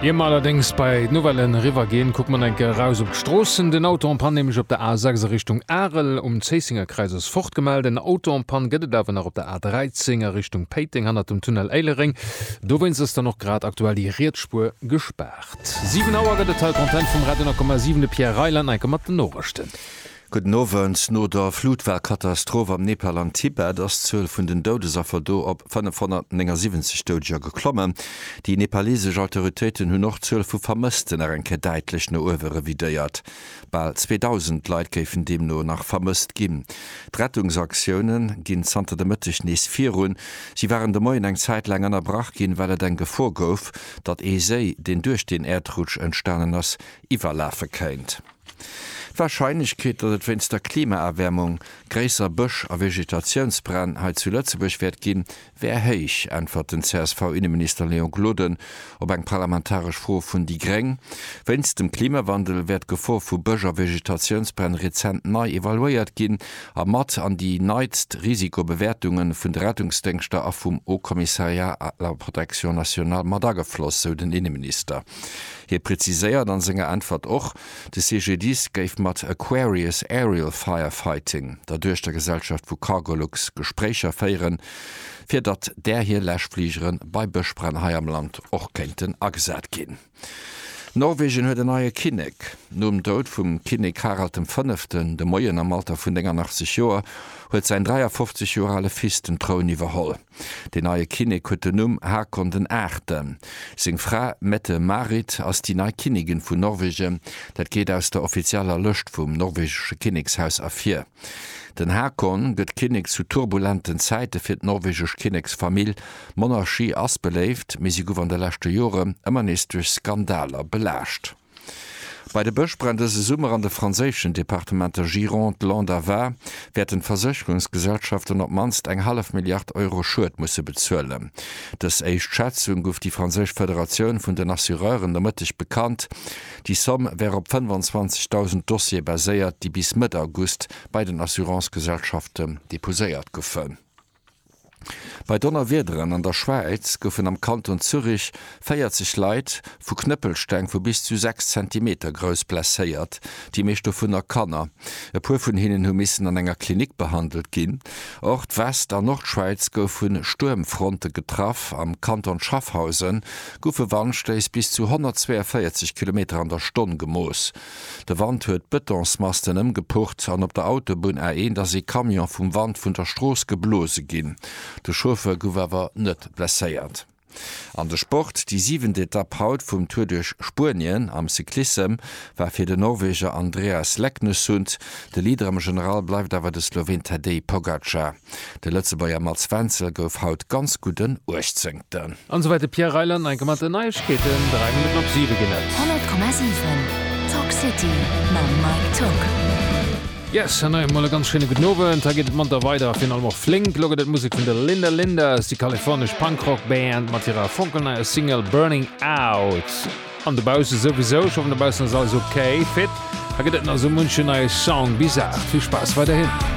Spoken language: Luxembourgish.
Ier mer allerdéngs bei d'Nouvellen eriwwergeen, kucke mer nach eng Kéier eraus op d'Stroossen. Den Auto en panne, nämlech op der A6 a Richtung Arel um Zéissingerkräiz, ass fort. Gemellt en Auto en panne gëtt et awer nach op der A13 a Richtung Péiteng hannert dem Tunnel Éileréng. Dowéinst ass dann och grad aktuell déi riets Spuer gespaart. 7 Auer gëtt et hei Content vum Radio 9,7. De Pierre Reyland enke mat den Norechten. Gudden Owend. No der Flutwalkatastroph am Nepal an Tibet ass d'Zuel vun den Doudesaffer do op 579 Doudeger geklommen. Déi nepaleesesch Autoritéiten hunn och d'Zuel vu Vermëssten nach eng Kéier däitlech no uewe revidéiert. Bal 2.000 Leit géifen deemno nach vermësst ginn. D'Rettungsaktioune ginn zanter de Mëtteg nees virun. Si waren de Moien eng Zäit laang ënnerbrach ginn, well et eng Gefor gouf, datt ee Séi, deen duerch den Äerdrutsch entstanen ass, iwwerlafe kéint. D'Warscheinlechkeet, datt et wéinst der Klimaerwäermung gréisser Bësch a Vegetatiounsbränn hei zu Lëtzebuerg wäert ginn, wär héich, äntwert den CSV-Inneminister Léon Gloden op eng parlamentaresch Fro vun déi gréng. Wéinst dem Klimawandel wär d'Gefor vu Bësch a Vegetatiounsbränn rezent nei evaluéiert ginn a mat an déi neitst Risikobewäertunge vun de Rettungsdéngschter a vum Haut Commissariat à la protection nationale mat agefloss, sou den Inneminister. Hie preziséiert a senger Äntwert och, de CGDIS géif mat Aquarius Aerial Firefighting, der Duechtergesellschaft vu Cargolux, Gespréicher féieren, fir datt där hir Läschfligere bei Bëschbränn hei am Land och kéinten agesat ginn. Norwegen huet en neie Kinnek. Nom Doud vum Kinnek Harald dem Fënneften de Moien am Alter vun 89 Joer huet säin 53 Joer ale Fils den Troun iwwerholl. Deen neie Kinnek huet den Numm Haakon den Aachten. Seng Fra Mette-Marit ass déi nei Kinnigin vun Norwegen, dat geet aus der offizieller Lëscht vum norwegesche Kinnekshaus ervir. Den Haakon gëtt Kinnek zu turbulenten Zäite fir d'norwegesch Kinneksfamill. D'Monarchie ass beléift, mee si gouf an de leschte Jore ëmmer nees duerch Skandaler belaascht. Bei de Bëschbränn dëse Summer an de franséischen Departementer Gironde, Landes a Var wäerten d'Versécherungsgesellschaften op d'mannst eng hallef Milliard Euro Schued musse bezuelen. Dës éischt Schätzung gouf déi franséisch Federatioun vun den Assureuren de Mëtteg bekannt. Déi Somm wär op 25.000 Dossiere baséiert, déi bis Mëtt August bei den Assurancegesellschaften deposéiert goufen. Bei Donnerwiederen an der Schwäiz goufen am Kanton Zürich 40 Leit vu Knëppelsteng vu bis zu 6 Zentimeter grouss blesséiert, déi meescht dovunner Kanner. E puer vun hinnen hu missen an enger Klinik behandelt ginn. Och d'West an Nordschwäiz gouf vu Stuermfronte getraff. Am Kanton Schaffhausen goufe Wandstéiss bis zu 142 Kilometer an der Stonn gemooss. De Wand huet d'Betonsmasten ëmgepurrt an op der Autobunn A1 ass ee Camion vum Wand vun der Strooss geblose ginn. De Chauffeur gouf awer net blesséiert. An de Sport, Déi siwent Etapp haut vum Tour duerch Spuenien am Cyclissem war fir den Norweger Andreas Leknessund. De Leader am General bleift awer de Sloween Tadej Pogacar. De Lëtzebuerger Mats Wenzel gouf haut ganz gutt en Uechtzéngten. An esou wäit de Pierre Reyland enke mat den Neiegkeeten. 3 Minutten op 7 ginn et. 100,7 Talk City mam Mike Tock. Yes, an hei emol e ganz schéine gudden Owend. Hei geet et manter weider a virun allem och flénk. Elo gëtt et Musek vun der Linda Lindas, déi kalifornesch Punk-Rock Band mat hirer fonkelneier Single Burning Out. An dobausse souwisou, ech hoffen dobaussen ass alles ok, fit. Hei gëtt et nach esou munchen neie Song bis 8. Vill Spaass weiderhin.